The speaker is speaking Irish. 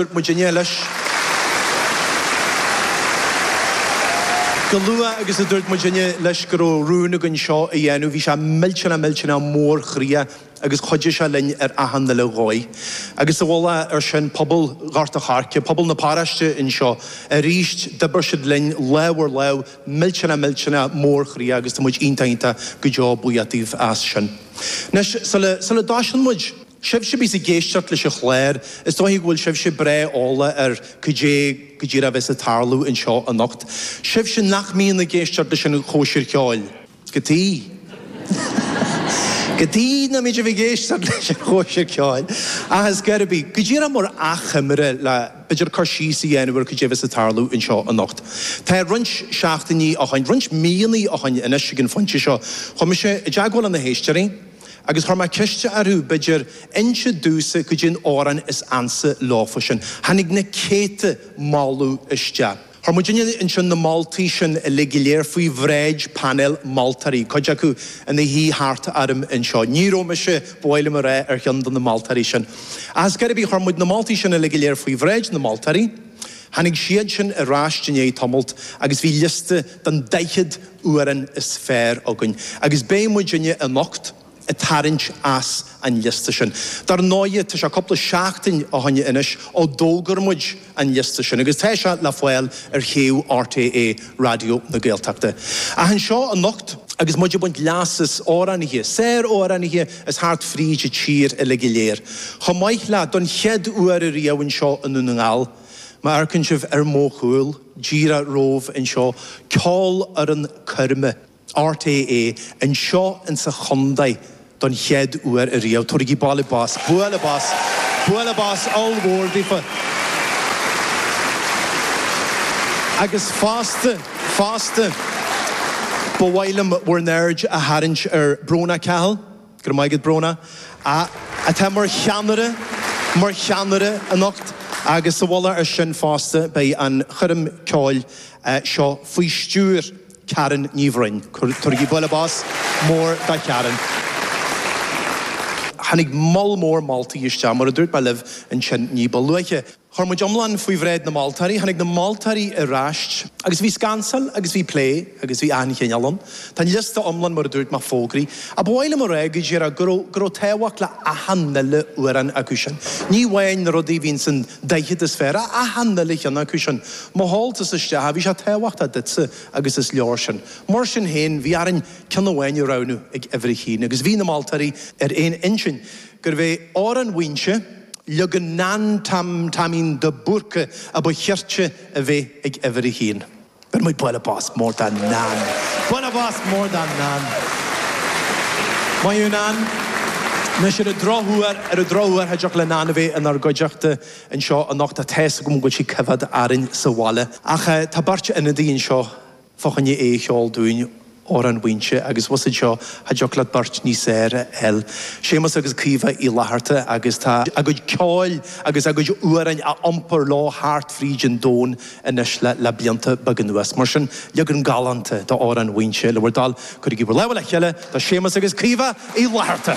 Dúirt muidinne leis go luath agus a dúirt muidinne leis go raibh rún againn seo a dhéanamh, bhí sé millteanach millteanach mórchroíoch agus chuidigh sé linn ar achan uile dhóigh. Agus sa mhullach ar sin, pobal Ghort a' Choirce, pobal na paráiste anseo, arís d'oibir siad linn lámh ar lámh millteanach millteanach mórchroíoch agus tá muid iontach iontach go deo buíoch daofa as sin. Anois, sula dtoisíonn muid, Sibhse a bhíos ag éisteacht leis an chlár, is dóiche go bhfuil sibhse breá eolach ar cad é go díreach a bheas ag tarlú anseo anocht. Sibhse nach mbíonn ag éisteacht leis an Chóisir Cheoil, cad chuige cad chuige nach mbíonn sibh ag éisteacht leis an Chóisir Cheoil, ach ar scor ar bith, go díreach mar achoimre le b'fhéidir cur síos a dhéanamh ar cad é a bheas ag tarlú anseo anocht. Tá roinnt seachtainí ó shoin, roinnt míonna ó shoin anois ag an phointe seo, chuaigh mise i dteagmháil le na héisteoirí, Agus chuir mé ceist orthu, b'fhéidir, inse domhsa cad é na hamhráin is ansa leofa sin. Tháinig na céadta moladh isteach. Chuir muid inne ansin na moltaí sin uilig go léir faoi bhráid painéal moltóirí, cuid acu ina suí thart orm anseo. Ní raibh mise, ba mhaith liom a rá, ar cheann de na moltóirí sin. Ach ar scor ar bith chuir muid na moltaí sin uilig go léir faoi bhráid na moltóirí, Tháinig siadsan ar ais i ndiaidh tamalt agus bhí liosta den daichead amhrán is fearr againn agus beidh muidinne anocht ag tarraingt as an liosta sin. Dar ndóighe tá sé cúpla seachtain ó shoin anois ó d'fhógair muid an liosta sin agus tá sé le fáil ar shuíomh RTÉ Raidió na Gaeltachta. Ach anseo anocht. Agus muid ag baint leas as amhránaithe, sáramhránaithe as thart fríd an tír uile go léir, chomh maith le, don chéad uair a riamh anseo i nDún na nGall, má amharcann sibh ar mo chúl, díreach romhaibh anseo, ceolfhoireann coirme. RTÉ, Anseo ins an chontae don chéad uair a riamh. Tabharaigí bualadh bos, bualadh bos, bualadh bos ollmhór daofa. Agus fosta, fosta, ba mhaith liom bhur n-aird a tharraingt ar Brónagh Cahill, go raibh maith agat Brónagh, atá mar cheannaire, mar cheannaire anocht agus sa mhullach ar sin fosta beidh an choirm ceoil seo faoi stiúir. Karen Ní Bhroin. Tabhairigí bualadh bos mór do Karen. Tháinig moll mór moltaí isteach, mar a dúirt mé libh ansin ní ba luaithe. Chuir muid iomlán faoi bhráid na moltóirí. Tháinig na moltóirí ar ais. Agus bhí scansáil agus bhí plé agus bhí achan chineál ann. Tá an liosta iomlán, mar a dúirt mé, fógraithe. A ba mhaith liom a rá go díreach go raibh, go raibh tábhacht le achan nuile amhrán acu sin. Ní amháin na rudaí a bhí insan daichead is fearr, ach achan nuile cheann acu sin. Mholadh tusa isteach, bhí sé tábhachtach duitse agus is leor sin. Mar sin féin, bhí orainn ceann amháin a roghnú ag uimhir a haon agus bhí na moltóirí ar aon intinn gurbh é Amhrán Mhaínse, leagan Nan Tom Taimín de Búrca a ba chirte a bheith ag uimhir a haon. Beidh muid bualadh bos mór do Nan! Bualadh bos mór do Nan! Maith thú Nan! Anois ar an drochuair, ar an drochuair, cha dtiocfadh le Nan a bheith inár gcuideachta anseo anocht ach tá's agam go bhfuil sí ag coimhéad orainn sa bhaile. Ach tá beirt ionadaí anseo fá choinne é a cheol dúinn, Amhrán Mhaínse agus i bhfus anseo cha dtiocfadh leat beirt níos fhearr a fháil, Séamus agus Caoimhe Uí Fhlatharta agus tá a gcuid ceoil agus a gcuid amhrán á iompar leo thart fríd an domhan anois le blianta beaga anuas. Mar sin, leagan galánta de Amhrán Mhaínse le bhur dtoil. Cuirigí bhur lámha le chéile do Séamus agus Caoimhe Uí Fhlatharta!